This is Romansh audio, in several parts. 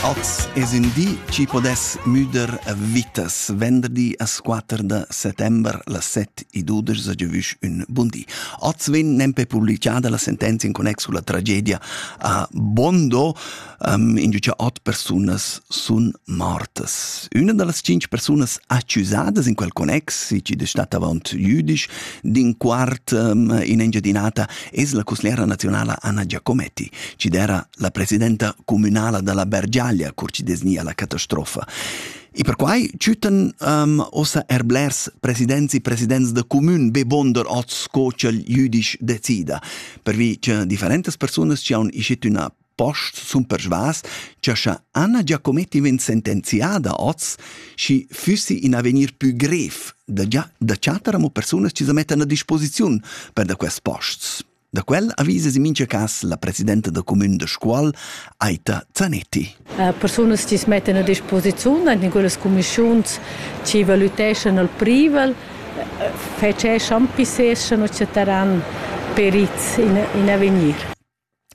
Oz es ün di chi podess müder vitas. Venderdi as quatter da settember las set e dudesch a giavüsch ün bun di. Oz vegn nempe publichada la sentenzia in connex culla tragedia a Bondo, um, in giu cha ot persunas sun mortas. Üna da las cinch persunas accusadas in quel connex, chi da stat avaunt jüdisch, d'in quart um, in Engiadinata es la cussgliera nazionala Anna Giacometti, chi d'era La presidenta communala dalla Bergiaglia curcidesnia la catastrofa. E perquai chütan um, ossa er blers presidents e presidents de commun be bonder oz sco ch'el jüdisch decida, per vi che differentas persunas ci haun ischet üna post sun persvas che scha Anna Giacometti ven sentenziada oz, schi füssi in avenir pü grev da, già, da chatter amo persunas ci sa mettan a disposiziun per da quest posts. Da quel avisas in mincha cas la presidenta da cumün da Scuol, Aita Zanetti. Persunas chi's mettan a disposiziun aint in quellas cumischiuns chi valüteschan al privel fetscheschan, pisseschan o chatteran perits in, in avegnir.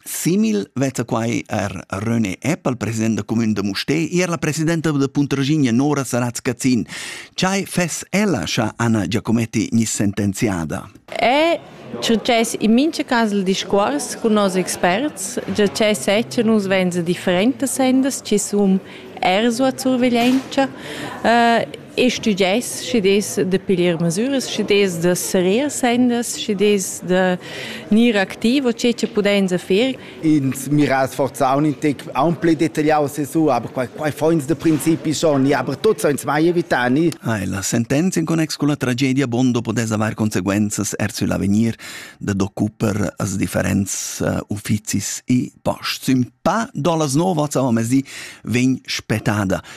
Simil vezza quai er René Eppel, president da cumün da Mustè, e er la presidenta da Puntraginha Nora Saratz-Cazin. Chai fess ella, scha Anna Giacometti gnis sentenziada? È success in mincha cas il discuors cun nos experts, già che sezcha nus vainsa differentas sendas chi sun eir suot surveglientscha eh, e stüdgess schi'd es da piglier masüras, schi'd es da serrer sendas, schi'd es da gnir activ o che cha pudainsa fer. ins mira sforzaun in tec aunc detagliaus su, aber quei, quei foins de principi schon, aber tuts uns mai evitani. Ah, la sentenza in connex con la tragedia Bondo potesse aver conseguences er su l'avegnir de d'occuper as differents uh, ufficis e posts. Un pa dolas nova, amo mesi, vegn spetada.